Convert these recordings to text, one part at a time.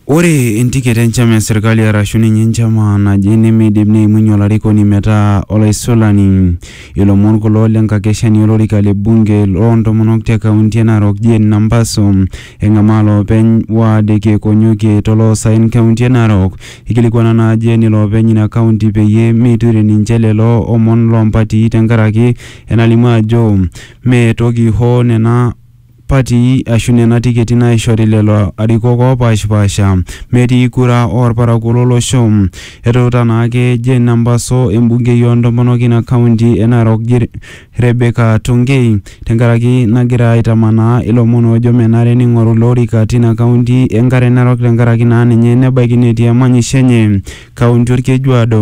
Ore entiket enchama e serkali arashu ninye enchama naje nemeidim neimunyie olarikoni metaa olaisulani. Ilomon kulo le nkakeshani olorika le bunge loo ntomonok te kaunti e Narok Jane Nambaso eng'amaa loopeny ward e Kiekonyokie to loosaen kaunti e Narok. Eikilikuana naa Jane iloopeny ina kaunti peyie meiture ninche lelo omon loo mpatii tenkaraki enalimu ajo mee toki hoo nena patii aashu nena tiketi naaishori lelo arikok oopaashipaasha metii kura oo lparakuo lo losho. Etuuta naake Jane Nambaso embungei oo ntomonok ina kaunti e Narok Rebecca Tongei tenkaraki nagira aitamanaa ilomon oojo menare neing'oru ilo orika tina kaunti e Nkare Narok tenkaraki naa ninye nebaiki netii emanyisho enye kaunti Olkejuado.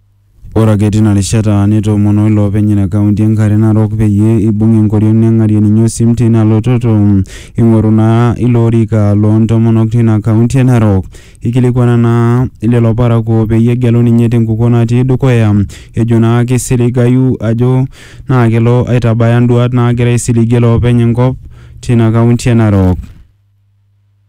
Ore ake tina rishata netoomono iloopeny ina kaunti e Nkare Narok peyie eibung enkoriong neng'arie ninye osim teina lototo eing'oru naa ilo orika loo ntomonok teina kaunti e Narok. Eikilikuana naa lelo parakuo peyie egelu ninye tenkukuo natii dukuya ejo naa keisiligayu ajo naa kelo aitabaya nduaat naagira aisiligie iloopeny enkop teina kaunti e Narok.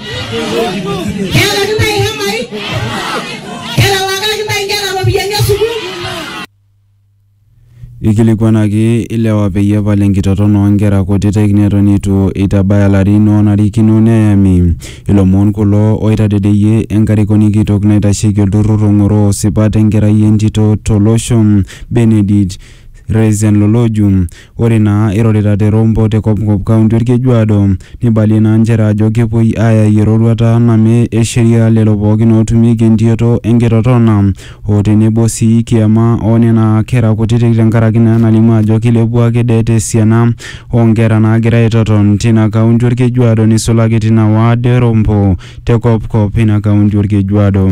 Keelaki ntae ihemai? Kerewakaki ntae inkera iropiyiani e sukuul? Eikilikuanaki ilewa peyie epal enkitoton oo nkera kutitik neton eitu eitabaya larin oonarikino neyami. Ilomon kulo oitadedeyie enkarikoni kitok naitasheki olturrur ong'oroo sipat enkerai entito to losho, Benedict Reisenloloju, Ore naa eirorita te Rombo te Kopkop Kaunti Olkejuado, neibalie naa nchere ajo kepuoi aayai eroruata name e sheria lelo pookin ootumieki entioto e nkitotona o tenebo sii kiama oo nena kera kutiti tenkaraki naa enalimu ajo keilepua ake det esiana oo nkera naagira aitoton tina kaunti Olkejuado neisulaki tina ward e Rombo te Kopkop ina kaunti Olkejuado.